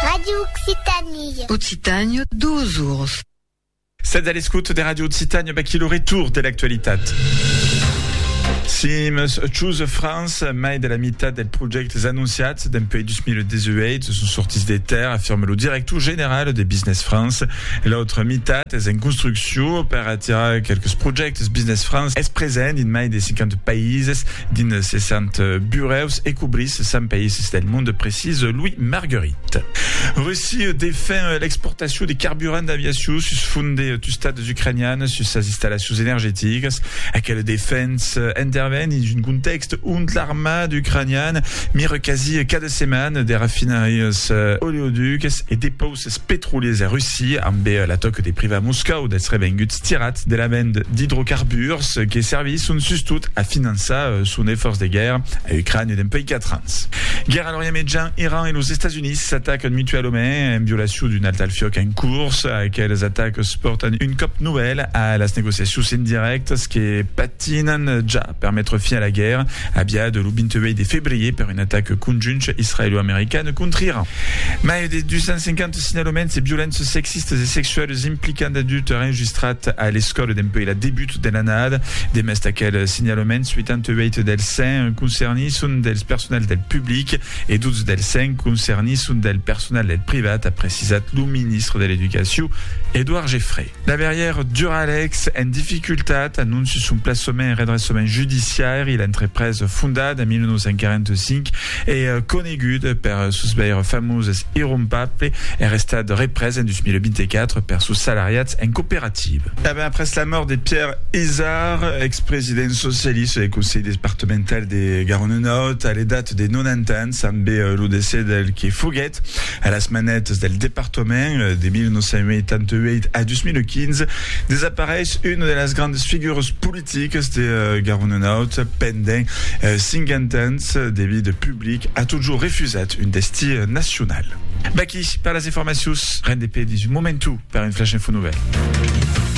Radio Occitanie. Occitània, dos ors. Sètz a l'escòta de Radio Occitània, baquí lo retour de l'actualitat. Si meus Choose France, mai de la meitat dels projèctes anunciats dempuèi 2018 son sortits de terre, afirme lo director general de Business France. L'autra meitat es en construccion Too, per atirar qualques projèctes Business France es present dins mai de 50 païses, dins 60 burèus e cobrís 100 païses del monde, precisa Louis Marguerit. Russia defen l'exportacion de carburant d'aviacion sus font de tustats ucranianas sus sas installacions energeticas. Aquela defensa interven dins un contèxt ont l'armada ucraniana mira quasi cada setmana de rafinarias oleoducas e depausas. Es petroliers e Russi, ambe la tòc de privar Moscòu dels revenguts tirats de la vend d'idrocarburs que servisson sustot a finançar son efòrç de guèrra a Ucrània dempuèi 4 ans. Guèrra a l'Orient Mejan, Iran e los Estats Units s'atacan mutualament en violacion d'un alt al fiòc en curs. Aqueles atacs pòrtan un còp novèl a las negociacions indirèctas que patinan ja. per metre fin a la guèrra aviada lo 28 de febrier per un atac conjunt israelo-american còntra Iran. Mai de 250 signalaments de violences sexistas e sexualas implicant d'adultes enregistrats a l'escòla dempuèi la debut de l'annada. Demest d'aqueles signalaments, 88 dels 100 concernits son dels personals del public e 12 dels 100 concernits son del personal del privat, a precisat lo ministre de l'Educacion, Edouard Geffray. Laberièr Duralex en dificultat, anonci son plaçament en redressament judiciaire, l'entreprés fondat en 1945 e conegut per sos veires famoses irrompaples es restat représ en 2024 per sos salariats en cooperativa. E ben après la mòrt de Pierre Izard, ex-president socialista del Conselh departemental de Garona Nòrd a l'edat de 90 ans, Tanben lo decès del que foguèt a las manètas del departament de 1988 a 2015 desapareish una de las grandas figuras politicas de Garonenaut pendent 50 ans de vida public a totjor refusat un destí nacional. Vaqui per las informacions, rendez-pe dins un momentu per un Flash Info Nouvèl.